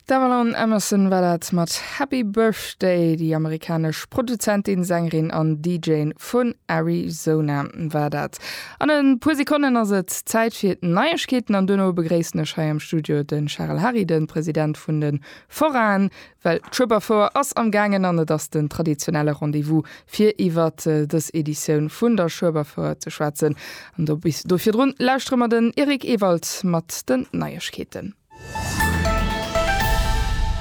D'Avalan Emerson war dat mat Happy Birthday. Déi amerikanesch Produzentin, Sängerin an DJen vun Arizona war dat. An e puer Sekonnen ass et Zäit fir d'Neiegkeeten an duerno begréissen ech hei am Studio de Charel Hary, de President vun de Foraen Well d'Schueberfouer ass am gaangen an et ass den traditionelle Rendez-vous fir iwwer dës Editioun vun der Schueberfouer ze schwätzen. An do bis do virdrun lauschtere mer den Eric Ewald mat den Neiegkeeten.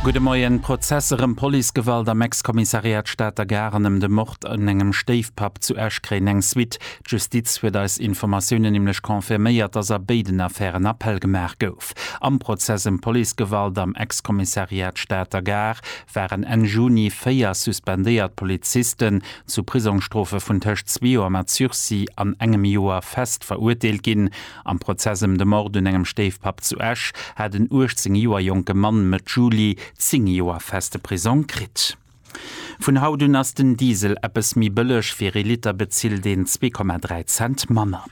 Gudde Moien. Prozesser ëm Policegewalt am Ex-Kommissariat Stater Gare an ëm de Mord un engem Stéifpapp zu Esch-Kréien eng Suite. D'Justiz huet eis Informatiounen nämlech confirméiert, dass a béiden Affären Appell gemaach gouf. Aarbecht. Am Prozess ëm Policegewalt am Ex-Kommissariat Stater Gare waren Enn Juni véier suspendéiert Polizisten zu Prisongsstrofe vun tëscht zwee Joer mat Sursis an engem Joer fest verurteelt ginn. Am Prozess ëm de Mord un engem Stéifpapp zu Esch hat en 18 Joer jonke Mann Mëtt Juli zéng Joer feste Prisong kritt. Vun haut un ass den Diesel eppes méi bëlleg, fir ee Liter bezilt een zwee Komma dräi Cent manner.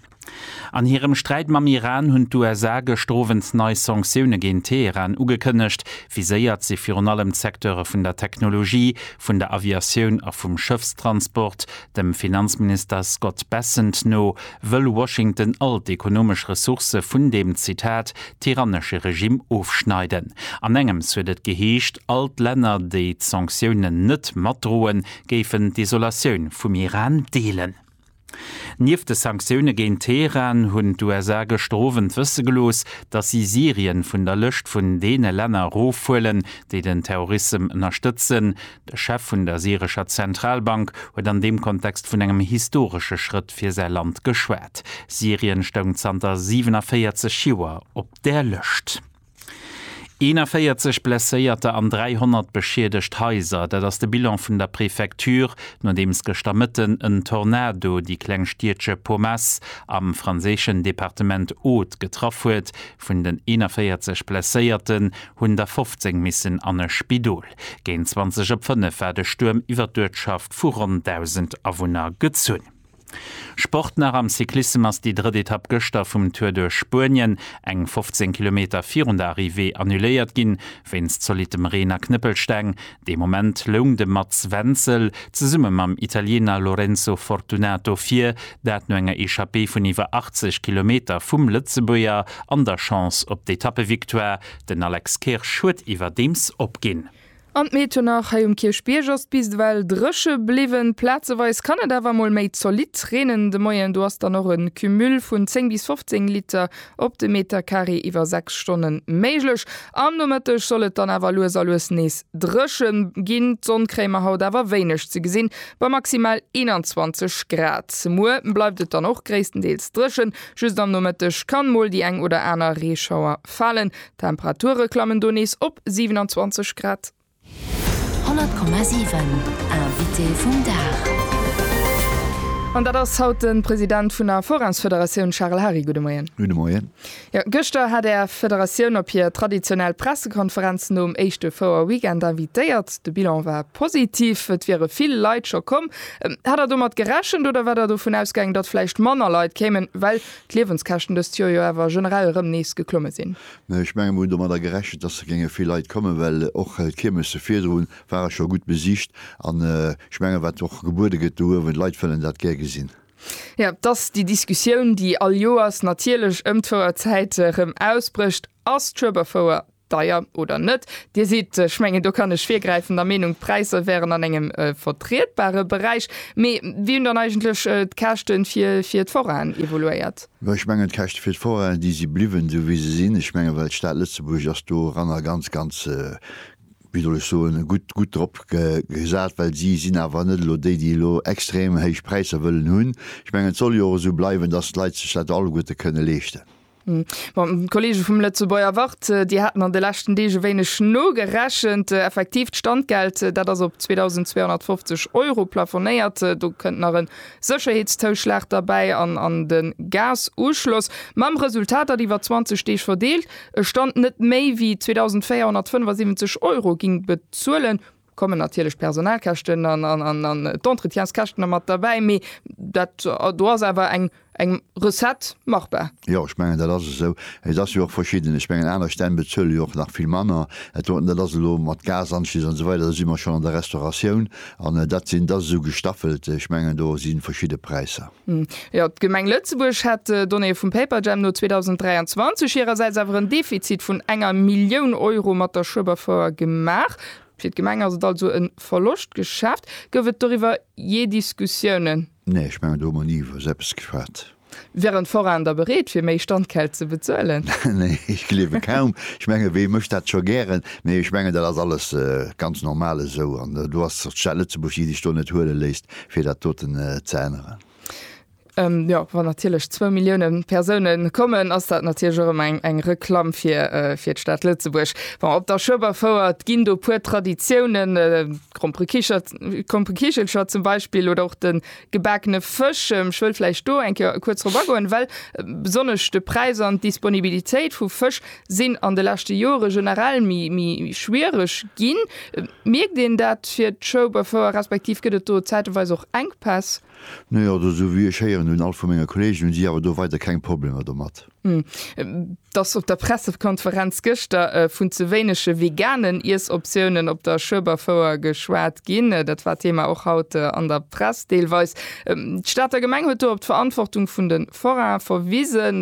An hirem Sträit mam Iran hunn d'USA gëschter Owend nei Sanktioune géint Teheran ugekënnegt. Viséiert si virun allem d'Secteure vun der Technologie, vun der Aviatioun a vum Schëffstransport. Dem Finanzminister Scott Bessent no wëll Washington all d'ekonomesch Ressourcë vun deem, Zitat, tyrannesche Regimm ofschneiden. An engems huet et geheescht, all d'Länner, déi d'Sanktiounen net matdroen, géifen d'Isolatioun vum Iran deelen. Nieft de Sanktioune géint Teheran hunn d'USA gëschter Owend wësse gelooss, datt si Syrien vun der Lëscht vun deene Länner erofhuelen, déi den Terrorissem ënnerstëtzen. De Chef vun der syrescher Zentralbank huet an deem Kontext vun engem historesche Schrëtt fir säi Land geschwat. Syrien stoung zanter 47 Joer op där Lëscht. 41 Blesséierter an 300 beschiedegt Haiser, dat ass de Bilan vun der Prefecture, nodeems gëschter Mëtten en Tornado déi kleng Stiedche Pomace am franséischen Departement Aude getraff huet. Vun den 41 Blesséierten hunn der 15 missen an e Spidol. Géint 20 op 5 war de Stuerm iwwer d'Uertschaft vu ronn 1.000 Awunner gezunn. Sport nach am Cyclissem ass déi drëtt Etapp gëschter vum Tour duerch Spuenien eng 15 Kilometer virun der Arrivée annuléiert ginn, wéinst zolittem Reen a Knëppelsteng. Dee Moment loung de Mats Wenzel zesumme mam Italiener Lorenzo Fortunato vir, dat no enger Echappée vun iwwer 80 Kilometer vum Lëtzebuerger an der Chance op d'Etappevictoire. Den Alex Kirsch huet iwwerdeems opginn. An d'Metonach hei um Kierchbierg ass bis ewell dréche bliwwen. Plazeweis kann et awer mol méi zolidd reenen. De Moien do ass dann och e Cumul vun 10 bis 15 Liter op de Metercarré iwwer 6 Stonne méiglech. Am Nomëtteg soll et dann awer lues a lues nees dréche ginn. D'Sonn kréie mer haut awer wéineg ze gesinn, bei maximal 21 Grad. Muer bleift et dann och gréisstendeels dréchen, just am Nomëtteg kann mol déi eng oder aner Reeschauer Falen. D'Temperature klammen do nees op 27 Grad. 100,7 Invité vum Dag. An dat ass haut de President vun der Forains-Federatioun Charel Hary. Gudde Moien. Gudde Moien. Jo, gëschter hat Är Federatioun op hir traditionell Pressekonferenz nom éischte Fouer-Weekend invitéiert. De Bilan war positiv, et wiere vill Leit scho komm. Hat Der domat gerechent oder war Der dovun ausgaangen, datt vläicht manner Leit kéimen, well d'Liewenskäschten dëst Joer jo awer generell erëm nees geklomme sinn. Ech menge mir hunn domadder gerechent, dass et géinge vill Leit kommen, well och d'Kiermesse virdru ware scho gutt besicht an ech menge wat och gebuede gëtt do uewen, d'Leit wëllen dat gär gesinn. Jo, et ass déi Diskussioun, déi all Joers natierlech ëm d'Fouerzäit erëm ausbrécht, Ass d'Schueberfouer Deier oder net? Dir sidd, ech mengen do kann ech virgräifen, der Meenung d'Präisser wären an engem vertrietbare Beräich. Mee wéi hunn dann eigentlech d'Käschte fir fir d'Foraine evoluéiert? Jo, ech mengen d'Käschte fir d'Foraine, déi si bliwwen esou wéi se sinn. Ech mengen, well d'Stad Lëtzebuerg ass doranner ganz ganz, wéi soll ech soen, gutt gutt drop gesat, well si sinn awer net elo déi, déi elo extrem héich Präisser wëllen hunn. Ech mengen et soll jo och esou bleiwen, datt d'Leit sech dat alleguerte kënne leeschten. D'Kollege vum Lëtzebuerger Wort déi haten an de leschten Deeg e wéineg nogerechent. Effektiv, d'Standgeld dat ass op 2.250 Euro plafonéiert. Do kënnt nach e Sécherheetszouschlag derbäi an de Gazuschloss. Mam Resultat, datt iwwer 20 Deeg verdeelt e Stand net méi wéi 2.475 Euro géing bezuelen Kommen natierlech d'Personalkäschten an d'Entretienskäschten da mat derbäi, mee dat do ass awer eng Recette machbar. Jo, ech mengen, dat ass esou. Et ass jo och verschidden. Ech mengen, aner Stänn bezuele jo och nach vill manner. Et do, dat ass elo mat Gasanschlüss an esou weider, do si mer schonn an der Restauratioun an dat sinn, dat ass esou gestaffelt. Ech mengen, do si verschidde Präisser. Jo, d'Gemeng Lëtzebuerg hätt Donnéeë vum Paperjam no 2023 hirersäits awer en Defizit vun enger Millioun Euro mat der Schueberfouer gemaach. Fir d'Gemeng ass et also e Verloschtgeschäft. Gouf et doriwwer jee Diskussiounen? Nee, ech mengen do hu mer ni iwwer esou eppes geschwat. Wären d'Forainen da bereet fir méi Standgeld ze bezuelen? Nee, ech gleewe kaum. Ech menge wee mécht dat scho gären? Nee, ech mengen dat ass alles ganz normal esou an do ass d'Stad Lëtzebuerg, déi sech do net huele léisst fir dat doten ze änneren. Jo, wann natierlech zwou Millioune Persoune kommen, ass dat natierlech och ëmmer eng eng Reklamm fir fir d'Stad Lëtzebuerg. Bon, op der Schueberfouert ginn do e puer Traditiounen, Krompekicher, Krompekichelcher zum Beispill oder och de gebakene Fësch. Ech wëll vläicht do eng Kéier kuerz drop agoen, well besonnesch de Präis an d'Disponibilitéit vu Fësch sinn an de leschte Jore generell méi schwiereg ginn. Mierkt een dat fir d'Chauffeure respektiv gëtt et do zäiteweis och Enkpäss? No jo, also esou wéi ech héieren, hunn all vu menge Kolleegen, hunn si awer do weider keng Problemer domat. Dass op der Pressekonferenz gëschter vun ze wéinege veganen Iessoptiounen op der Schueberfouer geschwat ginn, dat war Thema och haut an der Press deelweis. D'Stater Gemeng huet do op d'Verantwortung vun de d'Forain verwisen,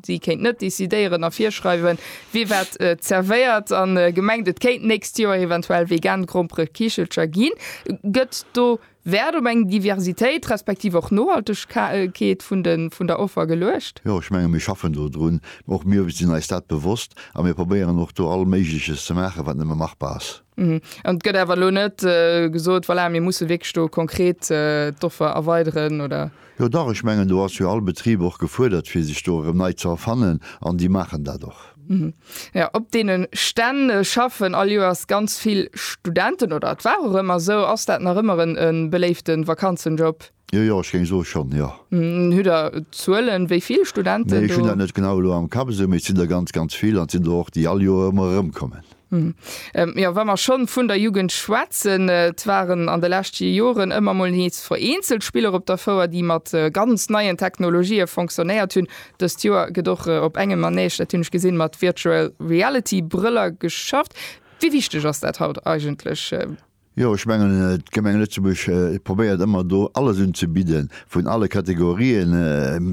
si kéint net decidéieren a virschreiwen, wie wat zerwéiert, a gemengt, et kéint d'nächst Joer eventuell vegan Gromperekichelcher ginn. Gëtt do Wäert op eng Diversitéit, respektiv och Nohaltegkeet vun der Offer geluecht? Jo, ech menge mir schaffen dodrun. Och mir sinn eis dat bewosst a mir probéieren och do all Méigleches ze maachen, wat nëmme machbar ass. An et gëtt awer elo net gesot, Voilà, mir musse wierklech do konkret d'Offer erweideren, oder? Jo dach, ech mengen do ass jo all Betrib och gefuerdert fir sech do erëm nei ze erfannen an déi maachen dat och. Jo, op deene Stänn schaffen all Joers ganz vill Studenten oder et war och ëmmer esou. Ass dat nach ëmmer e beléifte Vakanzenjob? Jo, jo, ech géing soe schonn, jo. Hutt Der Zuelen, wéi vill Studenten do? Nee, ech hunn dat net genau elo am Kapp esou, mee et sinn der ganz, ganz vill an et sinn der och, déi all Joer ëmmer erëmkommen. Hm. Ähm, ja, wa mer schonn vun der Jugend schwätzen, äh, et waren an de leschte Joren ëmmer mol nees vereenzelt Spiller op der Fouer, déi mat äh, ganz neien Technologië fonctionnéiert hunn. Dëst Joer gëtt och äh, op engem Manège, dat hunn ech gesinn, mat Virtual Reality Brëller geschafft. Wéi wichteg ass dat haut eigentlech? Äh? Jo, ech mengen, d'Gemeng Lëtzebuerg probéiert ëmmer do alles unzebidden, vun alle Kategorien,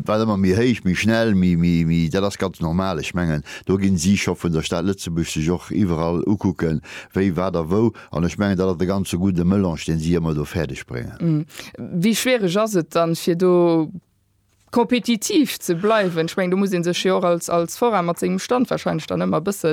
wat ëmmer méi héich, méi schnell, méi, méi, méi. Dat ass ganz normal. Ech mengen, do ginn si scho vun der Stad Lëtzebuerg sech och iwwerall ukucken, wéi, wat a wou. An ech mengen, dat ass e ganze gudde Melange, dee si ëmmer do fäerdeg bréngen. Wéi schwiereg ass et dann, fir do kompetitiv ze bleiwen. Ech mengen, do muss ee sech jo och als, als Forain mat sengem Stand wahrscheinlech dann ëmmer e bësse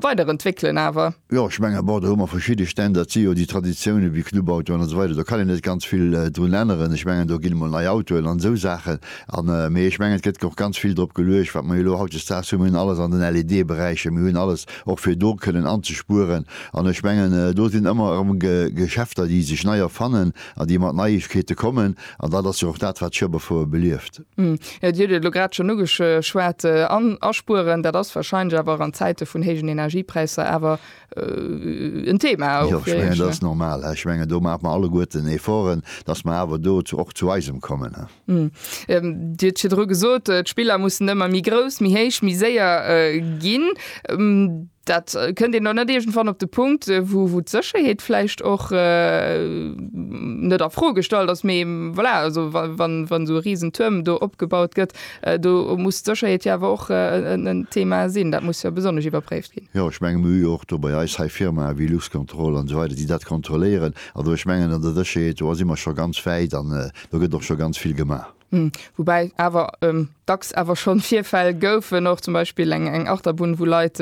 weiderentwéckelen awer. Jo, ech menge bon, do hu mer verschidde Stänn, dat si jo déi Traditiounen, wéi Clubautoen an esou weider, do kann een net ganz vill drun änneren. Ech mengen, do ginn emol nei Autoen an esou Saachen an, mee ech mengen, et gëtt och ganz vill drop geluecht, wat mer jo elo hautdesdaags hunn. Mir hunn alles an den LED-Beräicher, mir hunn alles och fir do kënnen anzespueren an ech mengen, do sinn ëmmer erëm Geschäfter, déi sech nei erfannen. an déi mat Neiegkeete kommen, an dat ass jo och dat, wat Schueberfouer belieft. Dir hutt et elo grad schonn ugeschwat, an aspueren, dat ass warscheinlech awer an Zäite vun héijen Energiepräisser awer en Thema och fir Iech, ne? Jo, ech mengen, dat ass normal. Ech mengen, do maache mer alleguerten Efforten, datt mer awer do och zu eisem kommen. Dir huet virdru gesot, d'Spiller mussen ëmmer méi grouss, méi héich, méi séier ginn. Dat kënnt een dann net iergendwann op de Punkt, wou d'Sécherheet vläicht och net a Fro gestallt ass, mee voilà, also wann esou e risen Tuerm do opgebaut gëtt, do muss d'Sécherheet jo awer och en Thema sinn. Dat muss jo besonnesch iwwerpréift ginn. Jo, ech mengen, mir hu jo och do bei eis hei Firmae wéi Luxcontrol an esou weider, déi dat kontrolléieren. Also ech mengen, an der Sécherheet, do si mer scho ganz wäit. do gëtt och scho ganz vill gemaach. Woubäi awer dacks awer schonn Virfäll goufen, och zum Beispill eng eng Achterbunn, wou Leit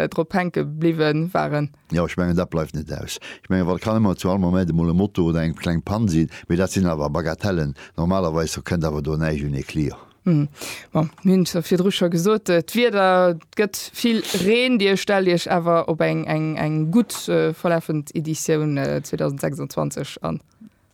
drop hänke bliwwe waren. Jo, ech mengen, dat bleift net aus. Ech mengen, wat kann ëmmer zu all Moment emol e Moto oder eng kleng Pann sinn, mee dat sinn awer Bagatellen. Normalerweis do kënnt awer do näischt un ee Clio. Bon, mir hunn et virdru scho gesot, d'Wieder, et gëtt vill Reen. Dir stellt Iech awer op eng eng eng gutt verlafend Editioun 2026 an?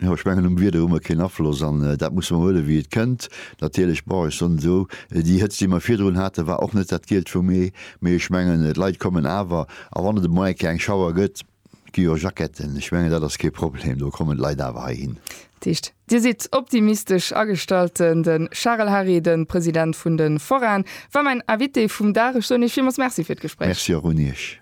Jo, ech mengen um Wieder hu mer keen Afloss an dat musse mer huele wéi et kënnt. Natierlech, bon, ech soen et esou, déi Hëtzt, déi mer virdrun haten, war och net dat Gielt vum Mee, mee ech mengen, d'Leit kommen awer. A wann et emol eng Kéier eng Schauer gëtt, gi jo Jacketten, ech mengen, dat ass kee Problem, do kommen d'Leit awer heihin. Dat heescht, Dir sidd optimistesch agestallt. Den Charel Hary, de President vun de Forainen, war mäin Invité vum Dag. Ech soen Iech villmools Merci fir d'Gespréich. Merci och un Iech.